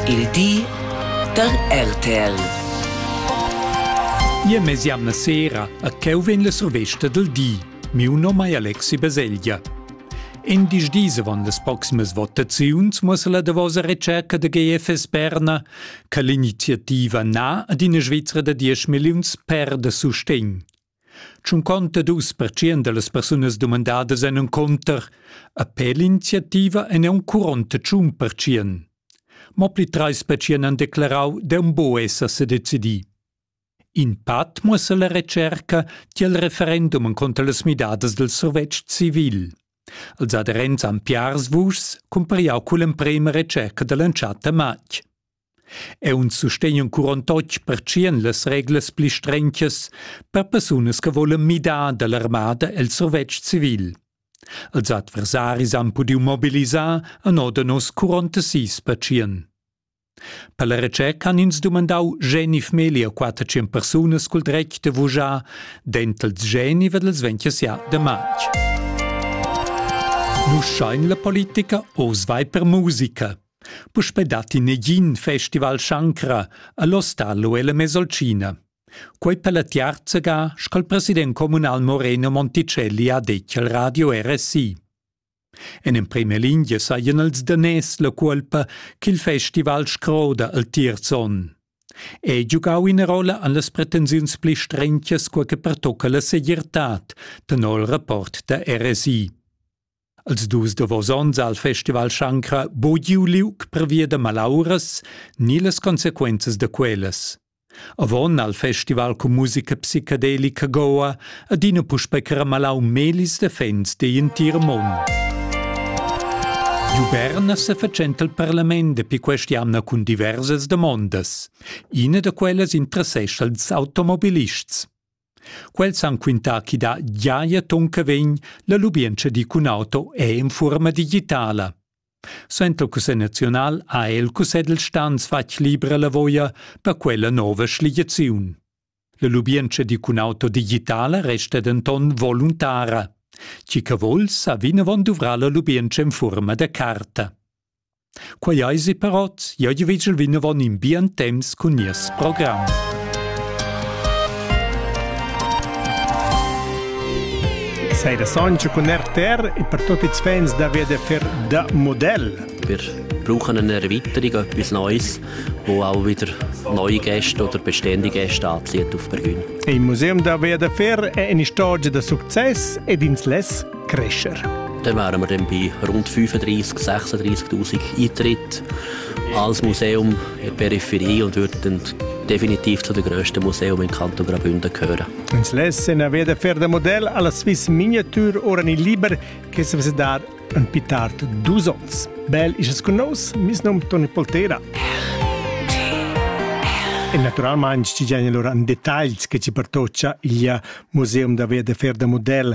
Il di da RTL. Nia mesiamna sera a cheu vegn la survesta del di. Miu nom è Alexi Beseglia. In dis dis avon las proximas votaziuns muossa la davosa retscherca de GFS Berna che l'iniziativa na ad ina Svizzera da 10 milliuns per da sustegn. Tschunconta dus pertschient dallas persunas dumandadas ein encunter a per l'iniziativa ein aunc curonta tschun pertschien. Mo pli treis pertschien han declarau d'eun buc esser sedecidi. In pat muossa la retscherca tiel referendum encunter las midadas del survetsch civil. Els aderents han piars vuschs cumpriau cull'emprema retscherca dall'entschatta matg. Aunc sustegn in curon totg pertschien las reglas pli strenchas per persunas che volen midar dall'armada el survetsch civil. Els adversaris han pudiu mobilisar a noda nos curonta sis pertschien. Per la retscherca han ins dumandau genif meglier quattertschien persunas cul dretg de vugiar dentels geni ed els vegn ja de matg. Nu schein la politica oz vai per musica. Puspei datti negin festival Shankra all'Ostalo ella Mesolcina. Quei per la tiarzaga sco il president communal Moreno Monticelli ha detg al radio RSI. En emprema lingia sajan els daners la cuolpa ch'il festival scroda al tiers onn. Ei giugau ina rolla an las pretensiuns pli strengias quei che pertocca la segirtad, tenor il rapport da RSI. Als dus davos onns al Festival Shankra bo giu liug pervia da malauras ni las consequenzas da quellas. Avon al festival cun musica psicadelica Goa adina puspei caramelau melis da fans digl entir mund. Giu Berna sefatschenta il parlament dapi quest'jamna cun diversas damondas. Ina da quellas interessescha ils automobilists. Quels han quintà chi da giaja ton che vegn la lubientscha di cun auto è in fuorma digitala. Senta il Cussegl naziunal ha el Cussegl stans fatg libra la voia per quella nova schliaziun. La lubientscha di cun auto digitala resta denton voluntara. Chi che vuls sa vinavon duvra la lubientscha in fuorma da carta. Quei eisi però jeu vegel vinavon in bien temps cun nies program. Sei da Sancho cun RTR e per tutti i fans da VDFR da Modell. Wir brauchen eine Erweiterung, etwas Neues, wo auch wieder neue Gäste oder bestehende Gäste anzieht auf Bergün. Im Museum da VDFR è una storia da succes ed ins less crescer. Dann wären wir dann bei rund 35.000, 36.000 Eintritt als Museum in der Peripherie und würden dann definitiv zu den grössten Museum im Kanton Graubünden gehören. Uns lassen a veda fer da model alla Swiss Miniatur ora ni liber che se vese dar un pitart dus ons. Bel is con nos, mis nom Toni Poltera. E naturalmente ci genere un detaglio che ci pertoccia il Museum da Via de Fer da Model